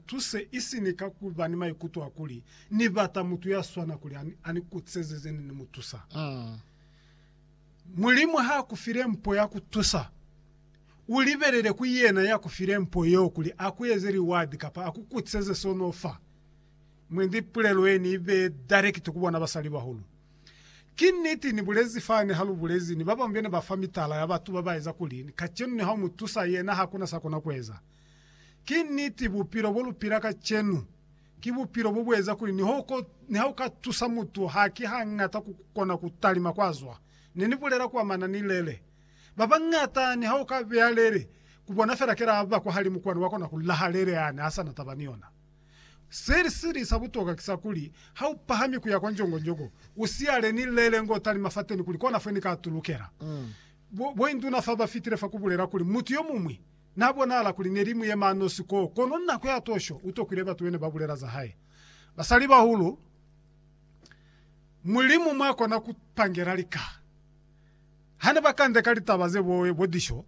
Tu se isi ni ka ku ba ni maikuto a kuli, Ni bata mutu ya swana kuli a ni kutiseze ze ne ni mu tusa. Mulimu ha a ku file mpo ya ku tusa, u libelele ku yena ya ku file mpo yeo kuli a ku eze liwadi kapa a ku kutiseze s'o n'o fa. Mwendi pulelo ye ni i bee darekiti ku bona basalibahulu. Ki niti ni bulezi fani ha lu bulezi ni ba bañwi be ne ba fa mitala ya batu ba ba eza kuli, Kacenu ni ha u mu tusa, yena ha ku na s'a kona ku eza. Ki niti, bupilo bo lu pila kacenu ki bupilo bo bu eza kuli niha u ka tusa mutu haki hañata ku kona ku talima kwa zwa. Ne ni bulela ku amana ni lele. Ba bañata niha u ka beya lele ku bona fela kela a ba kwahalimu kwani wa kona ku laha lele yani ha sa na taba ni yona. Se si li sa butokwa ki sa kuli, ha u pahami ku ya kwa njongonjongo, u siyale ni lele ngo talima fateni kuli kona fo ni ka tulukela. Bo induna fa ba fitile fa ku bulela kuli mutu yo muñwi Na bonala kuli neli muyema nosi koo, kono nako ya tosho utokwile batu bene babulela za hae. Basalibahulu, Mulimu mwakona kupangela lika. Hane bakande ka litaba ze boe bo disho,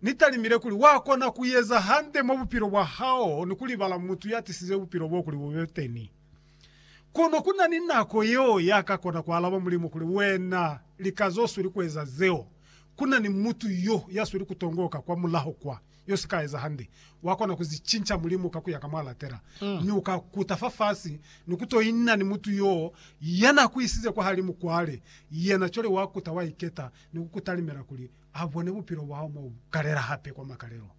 Ni talimile kuli wakona kueza hande mwa bupilo bwa hao ni kulibala mutu ya tisize bupilo bo kuli bube teni. Kono ku na ni nako yeo ya ka kona ku alaba Mulimu kuli, Wena, lika zo sweli ku eza zeo. Ku na ni mutu yo ya sweli ku tongoka kwa mulaho kwa, yo si ka eza hande. Wa kona ku zi cinca, Mulimu, ka ku ya ka mwa latela, mi u ka kuta fafasi ni ku to ina ni mutu yo ya na ku isize kwahalimu kwale. Yena cwale wa kuta, wa iketa, ni ku ku talimela kuli a bone bupilo bwa hao mwa ku kalela hape kwa makalelo.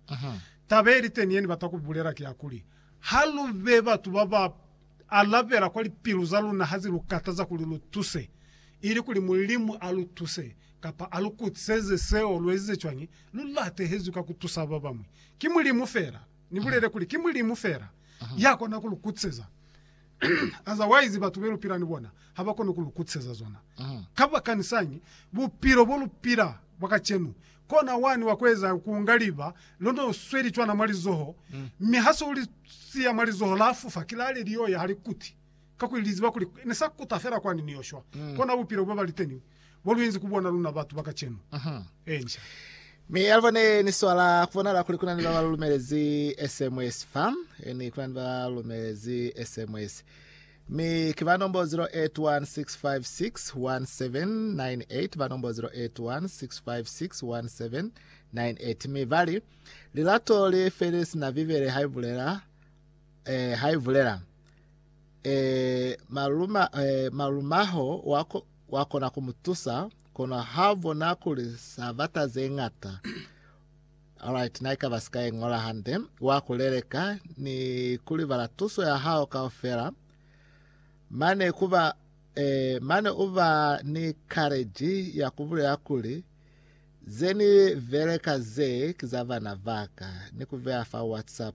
Taba ye li teni ye ni bata ku bulela ki ya kuli, Ha lu be batu ba ba alabela kwa lipilu za luna ha zi lu kataza kuli lu tuse, ili kuli Mulimu a lu tuse kapa a lu kutiseze seo lu ezize cwañi, lu latehezwi ka ku tusa ba bañwi. Ki Mulimu fela, ni bulele kuli, ki Mulimu fela ya kona ku lu kutiseza. Otherwise, batu be lu pila ni bona ha ba koni ku lu kutiseza zona. Kabakanisañi bupilo bo lu pila bwa kacenu Kona wani wa kueza ku unga liba londe u sweli cwana mwa lizoho, mi ha se u li siya mwa lizoho la fufa, kilale lio ya ha li kuti, kakuli li ziba kuli ne sa kuta fela kwani ni yo shwa. Kona bupilo bo ba liteni bo lu inzi ku bona luna batu ba kacenu. Encia. Mi ya liba ne ni swala ku bonala kuli kuna ni ba ba lu lumelezi SMS fa, ni kuna ni ba lu lumelezi SMS. Mi ki ba nombo 0816561798, ba nombo 0816561798. Mi ba li, Lilato li feli sina Bibele ha i bulela, eh, ha i bulela. Eh, maluma, eh, malumaho wa, ko, wa kona ku mu tusa, kono ha bona kuli sa bata ze ngata. Alright, naikaba sika ye ngola hande, wa kuleleka ni kulibala tuso ya hao kaufela. Mane kuba eh, mane uba ni courage ya kubulela kuli ze ni beleka ze ki za bana baka ni kubeya fa WhatsApp.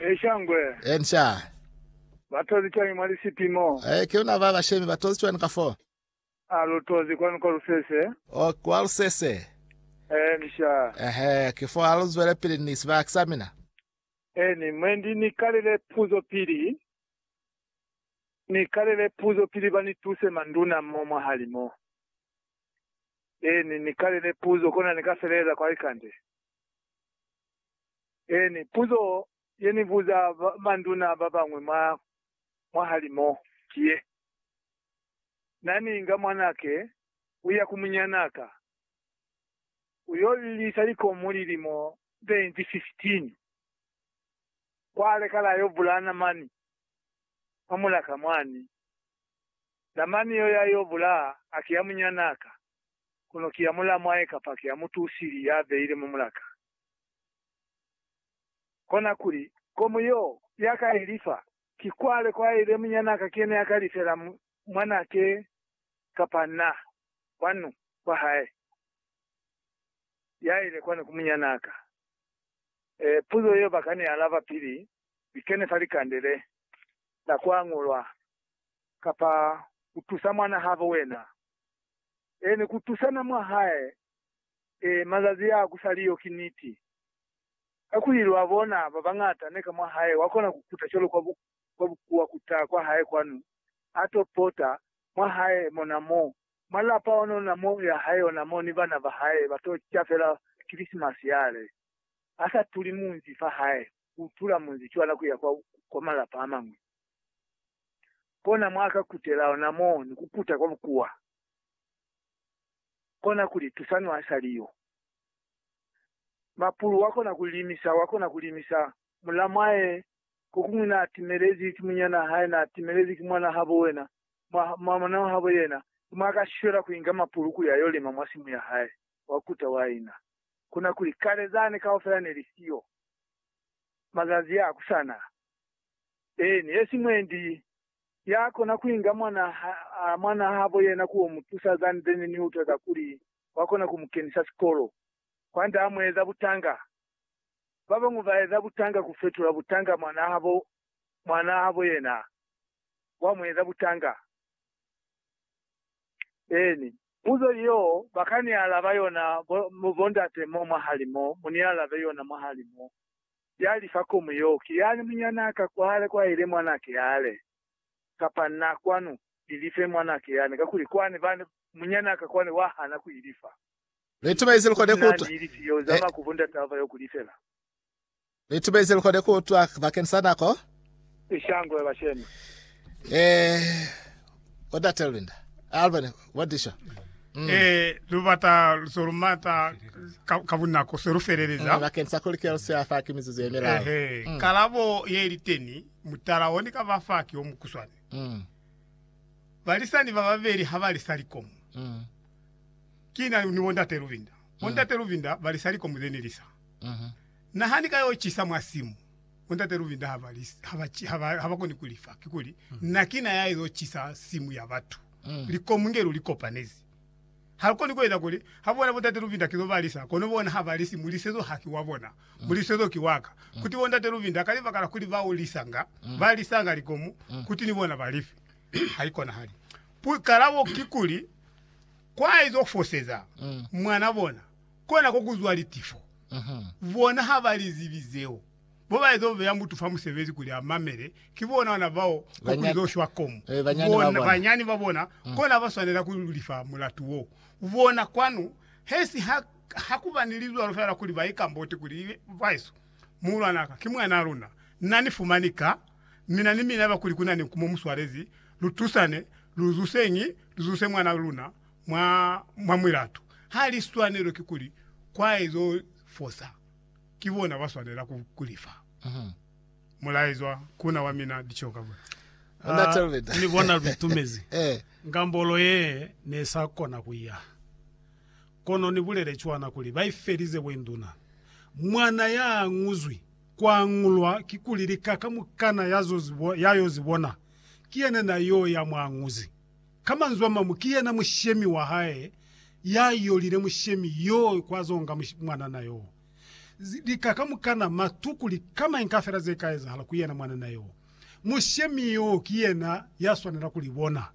Ee, shangwe. Inca. Ba tozi cwañi mwa lisipi mo? Ee, ki luna ba bashemi. Ba tozi cwani ka fo? A lu tozi kwanu kwa lusese? Oh, kwa lusese. Ee, inca. Ehe, ki fo ha lu zwelepili ni sibaka sa mina. Eeni, mwendi ni kalele puzo pili. Ni kalele puzo pili ba ni tuse manduna mo mwahali mo. Eeni, ni kalele puzo, kona ni ka feleleza kwa likande. Eeni, puzo ye ni buza manduna ba bañwi mwa mwahali mo ki ye, Na ni inga mwanake ku ya ku munyana ka ku yo lilisa likomu lilimo ze inzi 15, kwa lekala yo bulana mani mwa mulaka mwani, na mani yo ya yo bula haki ya munyana ka? kono ki ya mulamwae kapa ki ya mutu usili ya beile mwa mulaka. Kona kuli, Komu yo ya ka i lifa, ki kwale kwa ile munyana ka ki yena ya ka lifela mwanake kapa na kwanu kwa hae ya ile kwani ku munyana ka? E, puzo yeo ba ka ni alaba pili ni kene fa likande le la kwa ngolwa. Kapa u tusa mwana habo wena e ni ku tusana mwa hae e mazazi a ku sa li yo ki niti. Kakuli lwa bona ba bañata ne ka mwa hae wa kona ku kuta cwalo kwa bukuwa ku ta kwa hae kwanu, a to pota mwa hae mona mo, mwa lapa onona mo ya hae ona mo ni bana ba hae ba to ca fela Kilisimasi yale, a sa tuli munzi fa hae ku tula munzi cwana ku ya kwa malapa a mañwi. kona mwa ka kutela ona mo ni ku kuta kwa bukuwa, kona ku li tusa nwa sa li yo. Mapulu wa kona ku limisa, wa kona ku limisa. Muna mwae kokuñwi na timelezi ki munyana hae, na timelezi ki mwana habo wena, mwa, mwa mwana habo yena, ki mwa ka shwela ku inga mapulu kuli ayo lima mwa simu ya hae, wa kuta wa ina. Kona kuli, Kale zani kaufela ne li siyo. Mazazi a ku sana, Eeni, hesi mwendi ya kona kuinga mwana ha, mwana habo yena kuo mutusa than then ni utwa za kuli wa kona ku mukenisa sikolo. Kwande a mu eza butanga. Babañwi ba eza butanga ku fetula butanga mwana habo, mwana habo yena wa mu eza butanga. Eeni. Puzo yeo ba ka ni alaba yona bo, bo ndate mo mwahali mo, mu ni alabe yona mwahali mo. ya li fa komu yeo, ki yani munyanaa ka kwale kwa ile mwanake yale, kapa na kwanu, ilife mwanake yani, kakuli kwani bani munyanaa ka kwani wa hana ku ilifa. Batu ba izeli kwande Ni na kutwa. ni ilifi yeo, zama ku bo ndataba yo ku lifela. Batu ba izeli kwande kutwa bakeni sa nako. i shangwe bashemi. Eh, what I tell Linda? Alvin, what did you? Mm. Eh, lubata lusolumata kabunako se lufeleleza. Mm, bakeng sa kolikelo se afa ke mizuzu e melao. Eh, mm. kalabo ye liteni mutala one ka bafa ke o mukuswane. Mm. Balisani ba babeli ha ba lisa likomo. Mm. Kina ni bondate Luvinda. Bondate mm. Luvinda ba lisa likomo ze ni lisa. Mm -hmm. Nahani ka yo chisa mwa simu. Bo Ntate Luvinda ha ba, ha ba, ha ba, ha ba koni ku li fa. Kikuli, Na ki na ya izo cisa simu ya batu. Likomu nge lu li kopanezi. Ha lu koni ku eza kuli, ha bona Bo Ntate Luvinda kizo ba lisa, kono bona ha ba lisi, Mulisezo haki wa bona. Mulisezo ki wa ka. Kuti Bo Ntate Luvinda, ka libaka la kuli ba u lisanga, ba lisanga likomu, kuti ni bona ba li fe. Ha i konahali. Pu, kalabo kikuli, kwa izo foseza mwana bona. kona ko kuzwa litifo. Bona ha ba li zibi zeo. Bo ba ezo beya mutu fa musebezi kuli a mamele, ki bona ona bao ko kuli zo shwa komu. Bona, banyani ba bona, kona ba swanela ku lifa mulatu wo. Bona, kwanu, he si ha, ha ku ba ni lizwalo fela kuli ba ikamboti kuli, Bahesu, muhulwan'a ka, ki mwan'a luna. Na ni fumani ka, mina ni mina ba kuli ku na ni nkumo mu swalezi, lu tusane, lu zuseñi, lu zuse mwan'a luna, mwa, mwa mulatu. Ha li swanelo ki kuli kwa ezo fosa ki bona ba swanela ku, ku li fa. Mulaezwa ku na wa mina Dicheo ka bona. Ona Talvita. Ni bona lu itumezi. Eh. Ngambolo ye ne sa kona ku ya. Kono ni bulele cwana kuli ba i felize bo induna. Mwana ya anguzwi, ku angulwa, ki kuli lika kamukana ya zo zi, ya yo zi bona, ki yena na yo ya mu anguzi. Ka manzwi a mañwi, ki yena mushemi wa hae ya yolile mushemi yo kwa zo nga mwanana yo. Lika kamukana, matu, kuli ka mañi kafela ze ka ezahala ku yena mwanana yo, mushemi yo ki yena ya swanela ku li bona.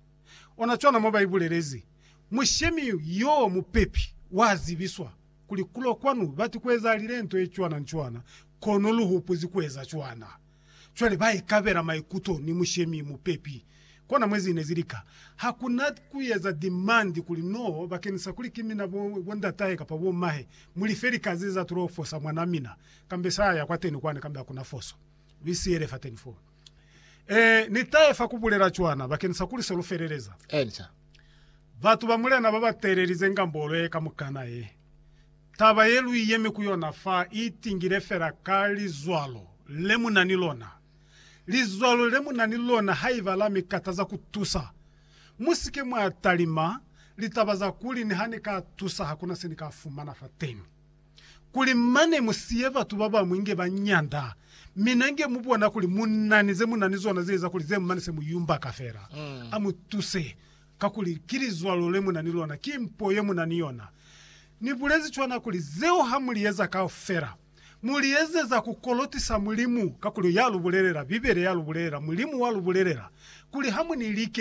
Ona cwana mo ba ibulelezi, Mushemi yo mupepi wa zibiswa kuli kulo kwanu bati ku ezahalile nto ye cwana ni cwana, kono lu hupuzi ku eza cwana. Cwale ba ikabela maikuto ni mushemi mupepi. Kona mwe zine zili ka. Ha ku na ku eza dimandi kuli, No, bakeñisa kuli ki mina, bo, bondatahe kapa bomahe, mu life lika ze za tolo fosa mwanaa mina. Kambe sa ya kwateni kwani, kambe ha ku na foso. Lu isiyele fateni foo. Ee, ni tahe fa ku bulela cwana, bakeñisa kuli se lu feleleza. Batu ba Mulena ba ba teelelize ngambolo ye kamukana ye. Taba ye lu yemi ku yona fa i tingile fela ka lizwalo le mu na ni lona. Lizwalo le mu na ni lona haiba la mi kataza ku tusa, mu si ke mwa talima litaba za kuli, Niha ni ka tusa, ha ku na se ni ka fumana fateni. Kuli mane mu siye batu ba bañwi nge ba nyanda, mina nge mu bona kuli mu na ni ze mu na ni zona ze eza kuli ze mane se mu yumbaka fela. A mu tuse. Kakuli ki lizwalo le mu na ni lona, ki mpo ye mu na ni yona. Ni bulezi cwana kuli, Zeo ha mu li eza kaufela, mu li ezeza ku kolotisa Mulimu, kakuli ya lu bulelela, Bibele ya lu bulelela, Mulimu wa lu bulelela, kuli ha mu ni like.